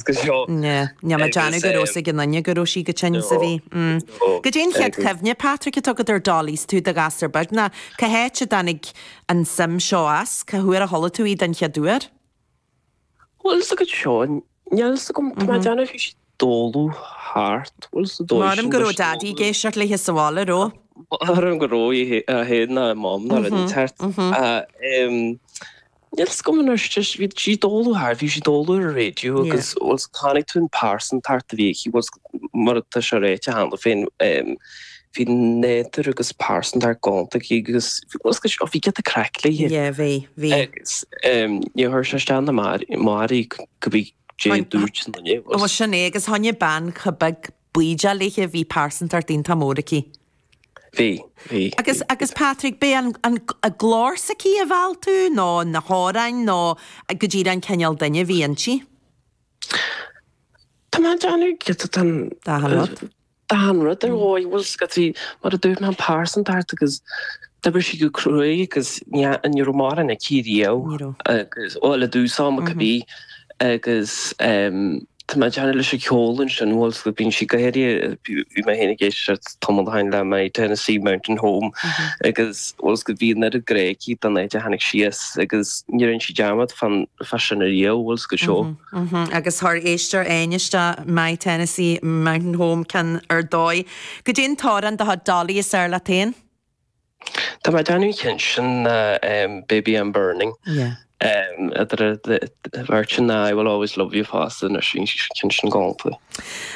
Níl mé ag déanamh go raibh a fhios ag aon nduine go raibh sí chomh tinn is a bhí. Goidé an chéad chuimhne, Patrick, atá agat ar Dolly is tú i do ghasúr beag nó cá háit a dtáinig an suim seo as? Cá huair a chuala tú í don chéad uair? Bhuel sa gcuid seo, níl a fhios agam, tá mé ag déanamh bhí sí i dtólamh thart, bhuel sa dóigh sin. Maram go raibh Daddy ag éisteacht leithe sa bhaile ró. Maram go raibh, é fhéin ná a Mom, ná a roinnt thart. Níl 's 'gam an raibh sí, bhí sí i dtólamh thart, bhí sí i dtólamh ar an radio agus bhfuil 's agat chonaic tú an pearsantacht a bhí aici, bhfuil 's agat mar tá sé ráite cheana féin ehm bhí nádúr agus pearsantacht galánta aici agus bhfuil 's agat bhí giota craic léithe agus ehm níor chuir sé isteach ná amach uirthi cibé goidé a dúirt na daoine agus. Bhuel sin é agus tháinig bean chomh beag bídeach léithe. Bhí pearsantacht iontach mór aici. Bhí, bhí, bhí. Agus Patrick, b'é an glór s'aici a mheall tú nó na hamhráin nó go díreach an cineál duine a bhí inti? Tá mé ag déanamh giota den. D'achan rud. D'achan rud ar dhóigh. Bhfuil 's agat mar a dúirt mé an pearsantacht agus d'oibir sí go cruaidh agus ní raibh mórán aici riamh. Ní raibh. Agus bhuel i dtús ama go bí agus tá mé ag déanamh leis an cheol ansin, bhfuil 's agat bhí sí go háirithe, bhí mé féin ag éisteacht tamall ó shin le My Tennessee Mountain Home agus bhfuil 's agat bhí an oiread grá aici don áit a tháinig sí as agus ní dhearn sí dearmad fan fá sin ariamh, bhfuil 's agat. Agus chuir éisteoir amháin isteach My Tennessee Mountain Home cionn ar dóigh. Goidé an t-amhrán de chuid Dolly is fearr leat féin? Tá mé ag déanamh cionn sin nó Baby I'm Burning. Mhairtin nó I will always love you fosta anois bhí sí cionn sin galánta.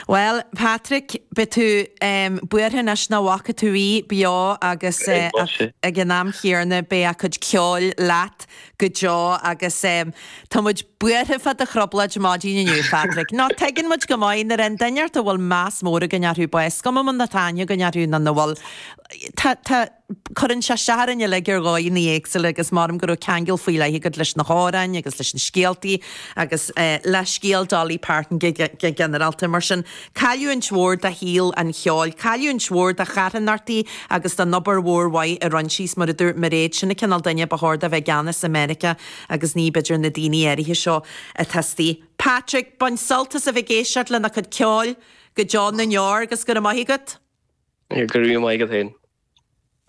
Bhuel Patrick beidh tú buartha anois nach bhfaca tú í beo agus ag an am chéanna beidh a cuid ceoil leat go deo agus tá muid buartha fá do thrioblóid maidin inniu Patrick. Nó tuigeann muid go maith nuair a imíonn duine ort a bhfuil meas mór againn orthu is cuma má tá aithne againn orthu nó nach bhfuil Tá, tá. Cuireann sé isteach orainn uilig ar dhóigheannaí éagsúla agus maram go raibh ceangal faoi leith agat leis na hamhráin agus leis na scéaltaí agus eh le scéal Dolly Parton go, go, go ginearálta. Mar sin, cailliúint mhór do shaol an cheoil, cailliúint mhór do charthanachtaí agus don obair mhór mhaith a rinne sí agus, mar a dúirt Mairéad, sin an cineál duine a ba chóir dó a bheith i gceannas i Meiriceá agus ní b'fhéidir na daoine áirithe seo atá istigh. Patrick, bain sult as a bheith ag éisteacht lena cuid ceoil! Go deo na ndeor, 'gus go raibh maith agat. Go raibh maith agat féin.